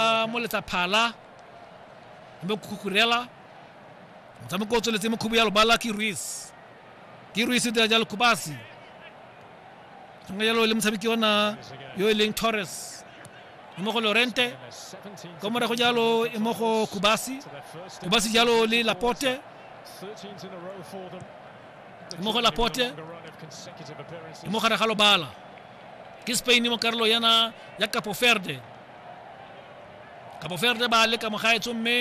a moletsa phala mme kukurela motshameko o tsweletse mo khubu ya lobala ke ruis ke ruis o dira jalo kubasi mme jalo le motshameki ona yo e leng torres e mo go lorente ko morago jalo e mo go kubasi kubasi jalo le lapote e mo go lapote e mo gare ga lobala ke spain mo karolo yana ya capo verde Cabo Verde ba leka mogaetso mme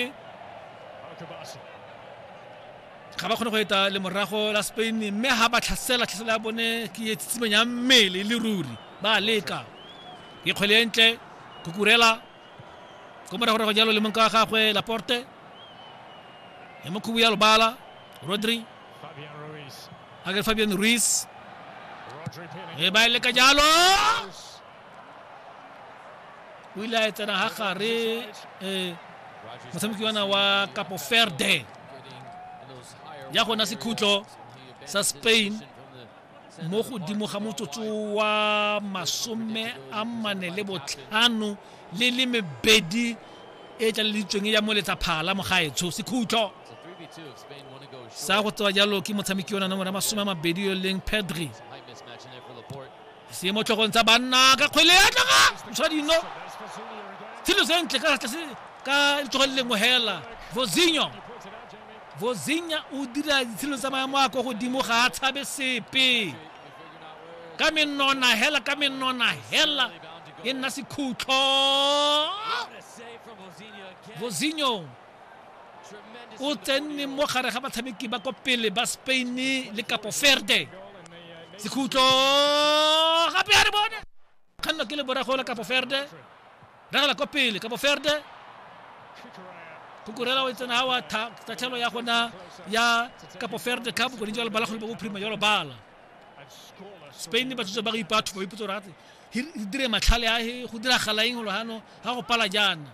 ga ba kgone go eta le morago la Spain mme ha ba tlhasela tlhasela ya bone ke e tsitsimeng ya mmele le ruri ba leka ke kgwele e ntle kukurela ko moragorago jalo le monka wa gagwe laporte ya mokhubu ya lobala rodri a ke fabian ruiz e ba e leka jalo o ile a e tsena ga gare um motshameki ona wa capo ferde ya gona sekhutlo sa spain mo godimo ga motsotso wa masome a mane le botlhano le le mebedi e tlaleditsweng ya moletsa phala mogaetsho sekhutlo sa go tsewa jalo ke motshameki yona nomoro ya masome a mabedi yo leng pedri se mo tlhogong tsa banna ka kgwele ya tloga ntsha dino selo sentle ka tlase ka letsogo le lengwe hela vozinho vozinha o dira ditshelo tsa maemo a kwa godimo ga a tshabe sepe ka menona hela ka menona hela e nna sekhutlo vozinho o tsenne mo gare ga batshameki ba ko pele ba spain le kapo ferde sekhutlo gape a re bone kganno ke le borago la kapo ferde ragela ko pele kapo ferde kukurela o e tsena gawa tatlhelo ya gona ya kapo ferde cup kone jalo bala kgole ba bophirima jalo bala spain ba tsotse ba go ipatho ba ipotsa gore re dire matlhale a go diragala eng lo gano ga go pala jaana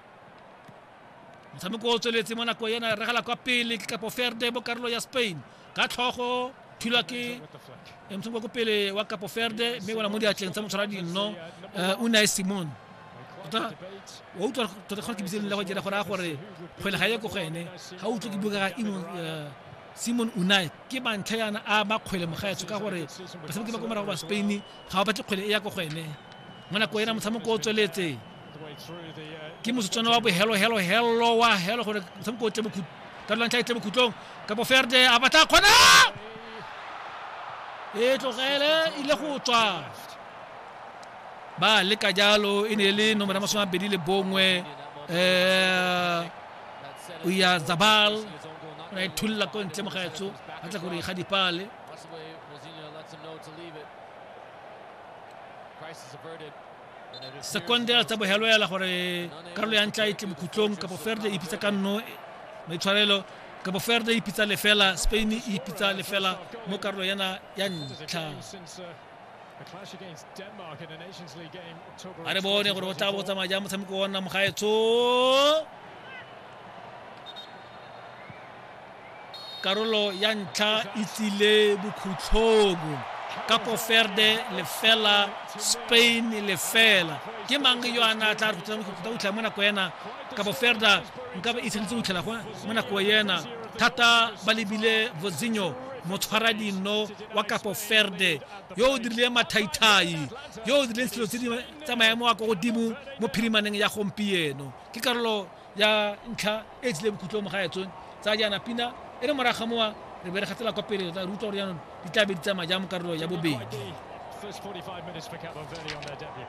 motshameko o tsweletse mo nako ena regala kwa pele ke kapo ferde mo karolo ya spain ka tlhogo thulwa ke motshameko ko pele wa kapo ferde mme wena mo diatleng tsa motshwara dinno eh, o nae simon tota wa utlwa tota kgona ke bitseleng la go dira gore a gore kgwele ga ye ko go ene ga utlwe ke buka ka imon eh, simon unai ke bantlha yana a makgwele mogaetsho ka gore batshameki ba ko morago ba spain ga ba batle kgwele e ya ko go ene mo nako ena motshameko o tsweletse ke motsotswana wa bohelo helo helo wa helo gore motshameko o tle mo ka lwantlha e tle mo khutlong ka boferde a batla kgona e tlogele ile go tswa ba leka jalo e ne e le nomoro ya masome a mabedi le bongwe um o ya zabal o na e thulla ko ntle mo gaetso a tla gore ga dipale Crisis averted. sekonde a tsabogelo ela gore karolo ya ntla e tle bokhutlong kapo ferde ipitsa ka nno maitshwarelo kapo ferde ipitsa lefela spain e ipitsa lefela mo karolo yana ya ntlha a re bone gore o tla bo tsamaya jang motshameko ona mogaetsho karolo ya ntlha e tsile bokhutlhong kapo ferde lefela spain lefela ke mang yo a na tla go utlha mo nako ena kapo ferda nka ba itsheditse go utlhela mo nako ena thata ba lebile vozinho motshwara dino wa kapo ferde yo o dirileng mathaithai yo o dirileng selo tse di tsa maemo a ko godimo mo phirimaneng ya gompieno ke karolo ya ntlha e tsile bokhutlong mo ga ya tsone tsa jaana pina e re moraga mowa re be re gatsela kwa pele tla re utlwa gore jaanong di tla be di tsamaya jang mo karolo ya bobedi First 45 minutes for Cabo Verde on their debut.